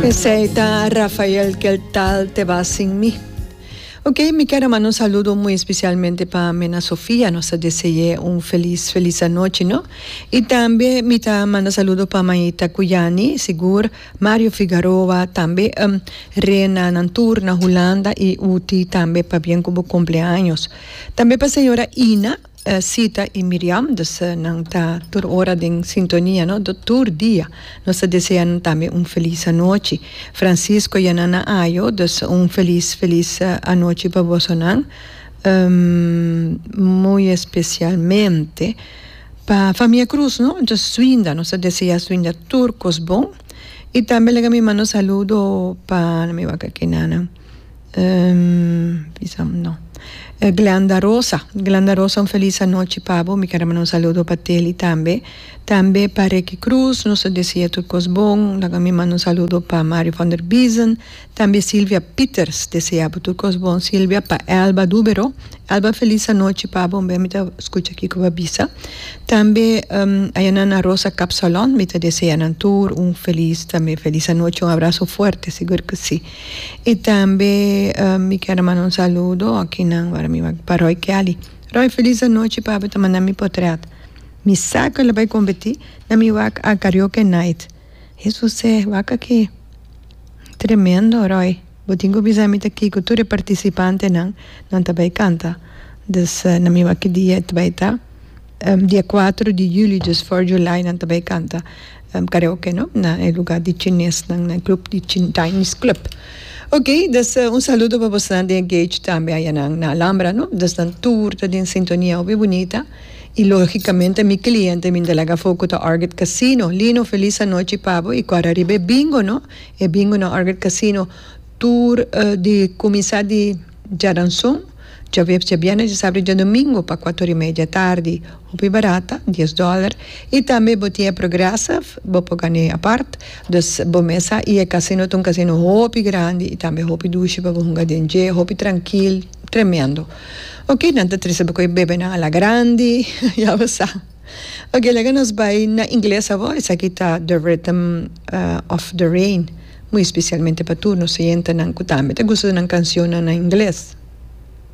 Esei ta Rafael kel tal te ba sin mi. Ok, mi ker a manda un saludo muy especialmente pa Mena Sofia, nos ta dese'é un feliz feliz anochi no. Y tambe mi ta manda saludo pa Maita Cuyani, sigur, Mario Figaroa, tambe ehm Rena nan tur na Hulanda y Uti tambe pabien cu bo cumpleaños. Tambe pa señora Ina. Sita y Miriam dus nan ta tur ora den sintonia no do tur dia nos ta desea nan tambe un feliz anochi Francisco y Anana Ayo dus un feliz feliz anochi pa boso nan muy especialmente pa famia Cruz no entonces Suinda nos ta desea Suinda tur cos bon y tambe laga mi manda un saludo pa mi wak aki Nana. Glenda Rosa Glenda Rosa un feliz anochi pa bo mi quiero manda un saludo pa Telly tambe tambe pa Ricky Cruz nos ta desea tur cos bon laga mi manda un saludo pa Mario van der Biesen tambe Silvia Pieters desea bo tur cos bon Silvia pa Elba Dubero Elba feliz anochi pa bo mi ta scucha kico bo a bisa tambe Ayana Ana Rosa Capsalon mi ta desea nan tur un feliz tambe feliz anochi un abrazo fuerte segur que si. Y tambe mi kier a manda un saludo akinan wara mi wak pa Roy Kelly. Roy feliz anochi papi ta manda mi potret. Mi sa cu el a bay competi na mi wak a karaoke night. Hesus se wak aki. Tremendo Roy. Bo tin cu bisa mi ta Kiko tur e participantenan nan ta bay canta. Dus na mi wak e dia ta bay ta dia cuatro di julio, dus for July nan ta bay canta. karaoke no na e lugar di chinesnan na e club di chinese club ok dus un saludo pa bosnan den gage tambe ayanan na alambra no dus nan tur ta den sintonia hopi bunita y logicamente mi cliente mi ta laga for cu ta orget casino lino feliz anochi pa bo y cu ariba e bingo no e bingo na orget casino tur di cuminsa di Djadanson, Djaweps, Djabièrnes, Djasabra i Djadomingo pa kuator i media tardi. Hopi barata, dies dòler. I tambe bo tin e Progressive, bo por gan'é apart. Dus bo mesa i e kasino ta un kasino hopi grandi i tambe hopi dushi pa bo hunga den dje, hopi trankil, tremendo. Oke, nan ta trese bo ku e bebenan a la grandi, ya bo sa. Oke, laga nos bai na ingles awor, esaki ta The Rhythm of the Rain. Muy especialmente pa tur nos oyentanan cu tambe ta gusta di nan cancionnan na ingles.